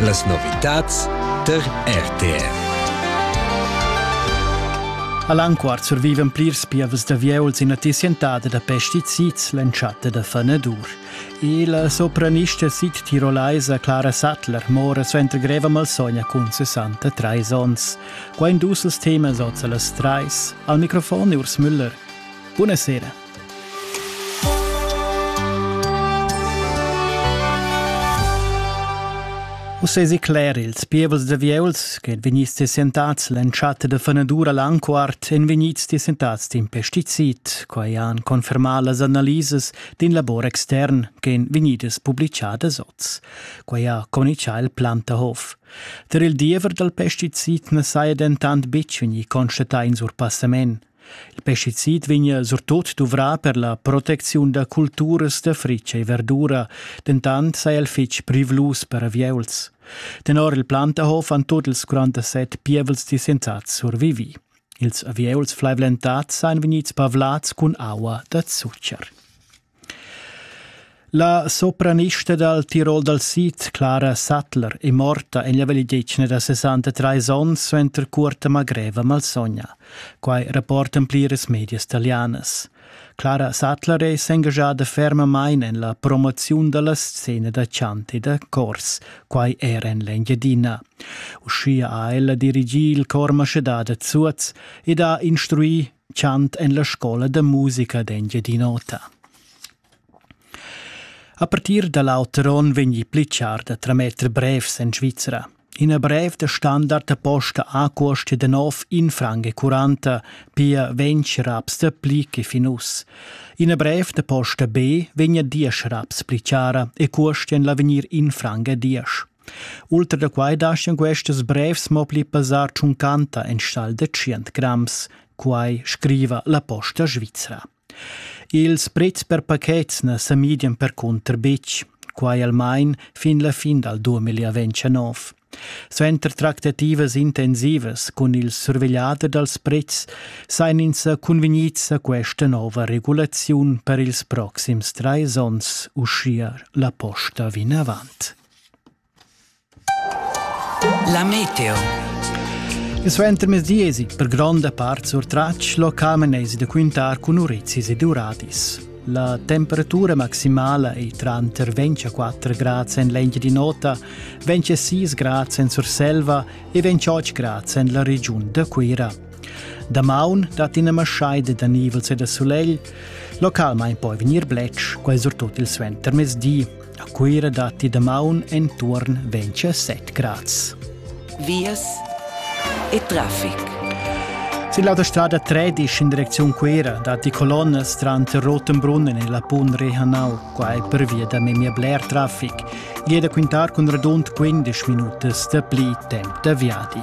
Las novitads tar RTR. All'anquart survivan plirs pievas da vieuls ina tissientada da pesticids l'entschatta da fanadur. E la sopranista sid-tirolaisa Clara Sattler mora suenter greva malsogna cun 63 onns. Qua in dus temas oz a las trais. Al microfon Urs Müller. Buonasera. Uss esi cler ils pievels da vieuls che vegnids descentats l'entschatta da fenadura l'anquart èn vegnids descentads d'in pesticid. Quai han confermà las analisas d'in labor extern ch'èn vegnidas publitgadas oz. Quai ha communitgà il Plantahof. Der il diever dal pesticid na saja dentant betg vegnì constatà in surpassament. Il pesticid vegnia surtut duvrà per la protecziun da culturas da fritg e verdura, dentant saja el fitg privlus per avieuls. Tenor il Plantahof han tut ils 47 pievels disentats survivi. Ils avieuls flaivlentads sajan vegnids pavlads cun aua da zucher. La sopranista dal Tirol dal sid, Clara Sattler, è morta en la vegliadetgna da 63 onns suenter cuorta magreva malsogna. Quai rapportan pliras medias talianas. Clara Sattler è s'engaschada fermamain en la promoziun da la scena da chant e da chors, quai era en l'Engiadina. Uschia ha ella dirigì il chor Maschedà da Zuoz ed ha instruì chant en la scola da musica d'Engiadin'Ota. A partir da l'auter onn vegni pli char da trametter brevs en Svizra. Ina brev da standard posta a cuosti de nov in franc e curanta, pia ventg raps da pli che fin us. Ina brev da posta B vegna diesch raps pli chara e cuosti en l'avegnir in franc a diesch. Ultra da quai daschian questas brevs mo pli pesar tschuncanta enstagl da tschient grams, quai scriva la Posta svizra. Ils prets per pachets na sa midian percunter betg, quai almain fin la fin dal 2029. Suenter tractativas intensivas cun il survegliader dals prets sain ins sa cunvegnids a questa nova regulaziun per ils proxims trais onns, uschia la posta vinavant. La meteo. Il suentermezdi esi per gronda part surtratg locamenesi da quintar cun urizis ed uradis. La temperatura maximala ei tranter 24 grads en l'engia di nota, 26 grads en Surselva e 28 grads en la regiun da Cuira. Damaun dat ina maschaida da nivels e da sulegl, localmain poi vegnir bletsch, quai surtut il suentermezdi. A Cuira datti damaun entuorn 27 grads. Vias e traffic. Sin l'autostrada 13 in direcziun Cuira datti colonnas tranter Rotenbrunnen e la Pun Rehanau, quai pervia da memia bler traffic. Gie da quintar cun radund 15 minutas da pli temp da viadi.